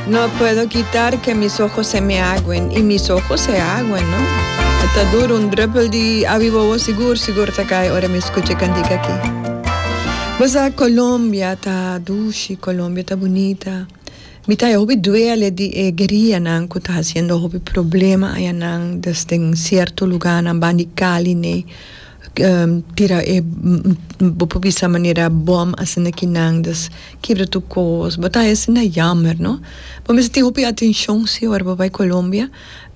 No puedo quitar que mis ojos se me aguen y mis ojos se aguen no e ta duro un druppel di abi bobo sigur sigur ta cay ora mi scucha e cantica aki bo sa Colombia ta dushi Colombia ta bunita mi ta hopi duele di e guerilla nan cu ta haciendo hopi problema ayanan desden cierto lugar nan bandi Cali ney. tira e bo por bisa manera bom a sende kinan dus kibra tur kos bo ta haci na yamer no bo mester tin hopi atencion si ora bo bai Colombia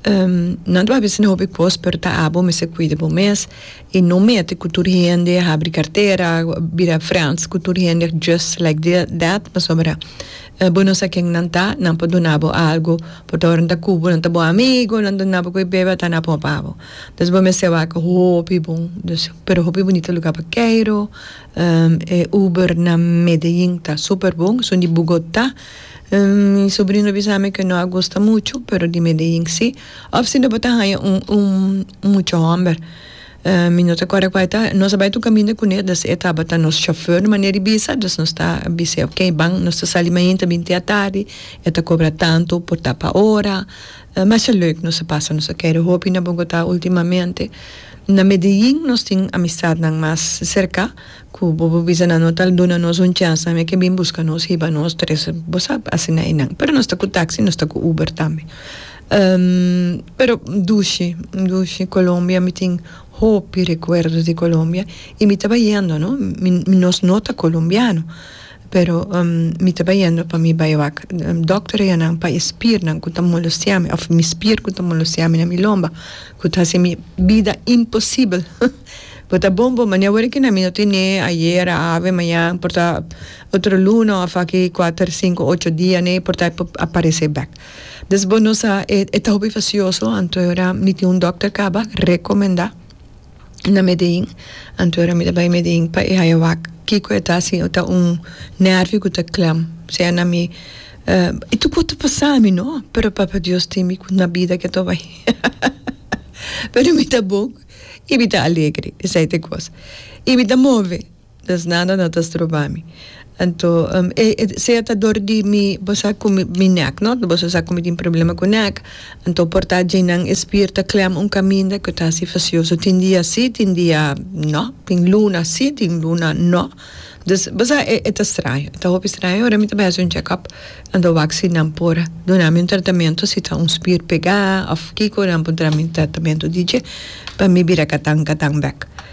nan ta haci na hopi kos pero ta abo mester cuida bo mes y no mete cu tur hende habri cartera bira friends cu tur hende just like that pasobra bo no sa ken nan ta nan por duna bo algo pasobra nan ta cubo nan ta bo amigo nan duna bo cu e bebe ata nan a pon pa bo Nos bo mester waka hopi bon dus pero hopi bunita luga pa Cairo e Uber na Medellin ta super bon esun di Bogota mi sobrino bisa mi ke no a gusta muchu pero di Medellin si of sino bo ta haya un un mucho homber mi no ta kòrda kual e ta nos a bai ta un kaminda kune dus e tabata nos shofèr na manera di bisa dus nos ta bis'e oke ban nos ta sali mainta binti atardi e ta kobra tantu por ta pa ora. Masha leuk nos a pasa, nos a kere hopi na Bogotá ultimamente. Na Medellín nos tin amistadnan mas serká ku bo por bisa nan no ta duna nos un chèns nan e ke bin buska nos hiba nos tres, bo sa, asina einan. Pero nos ta ku taksi, nos ta ku Uber tambe. Pero dushi, dushi Colombia mi tin hopi rekuerdos di Colombia i mi tabata yendo, no? Mi nos no ta colombiano. Pero mi ta bai yendo pa mi bai wak dòkter eyanan pa e spiernan ku ta molosia mi òf mi spier ku ta molosia mi na mi lomba ku ta hasi mi bida imposibel bo ta bon bo mane awor aki mi no tin nee ayera ave mañan por ta otro luna òf aki kuater sinku ocho dia nee por ta por aparesé bèk dus bo no sa e ta hopi fasioso anto mi tin un dòkter kaba rekomendá. na Medellín. Anto era mi ta bai Medellín pa e haya wak kiko e ta sin o ta un nervio ku ta klèm sea na mi i tur kos ta pasa mi no pero Papa Dios tin mi na bida ke ato bai pero mi ta bou i mi ta alegre esei ta e kos i mi ta move Nos nada no ta stroba mi. Anto e sea ta dor di mi bo sa cu mi mi nek no bo so sa cu mi tin problema cu nek anto por ta djeinan e spier ta clem un caminda cu ta si facioso tin dia si tin dia no tin luna si tin luna no dus bo sa e e ta straño e ta hopi straño ora mi ta bay haci un check up anto wak si nan por duna mi un tratamento si ta un spier pega of kico nan por dra mi un tratamento di dje pa mi bira catan catan bek.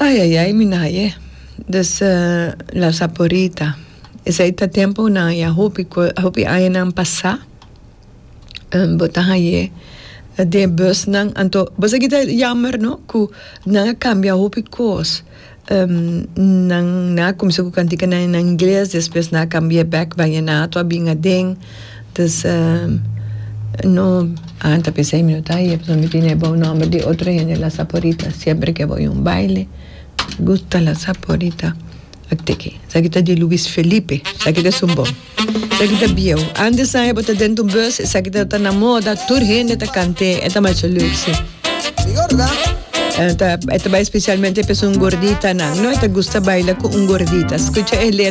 Ai ai ai mi naye dus la saporita esei ta temponan ya hopi ko hopi añanan pasá bo ta hañé de busnan anto bo sa kita yamber no ku nan a kambia hopi kos nan nan a kumsa ku kantika nan na ingles despues nan a kambia bek baña nan a tua bin aden Dus no a ta pensa ei mi no ta ahí e pasobra mi tin ebao nomber di otro hende la saporita siempre ke bo un baile gusta la saporita aki ki esaki ta di Luis Felipe esaki ta su bo esaki ta bieu antes sa e bo ta dentro un bus esaki ta ta na moda tur hende ta kant'e e ta masha leuk si e ta bai specialmente p'esun gorditanan no e ta gusta baila ku un gordita skucha e let.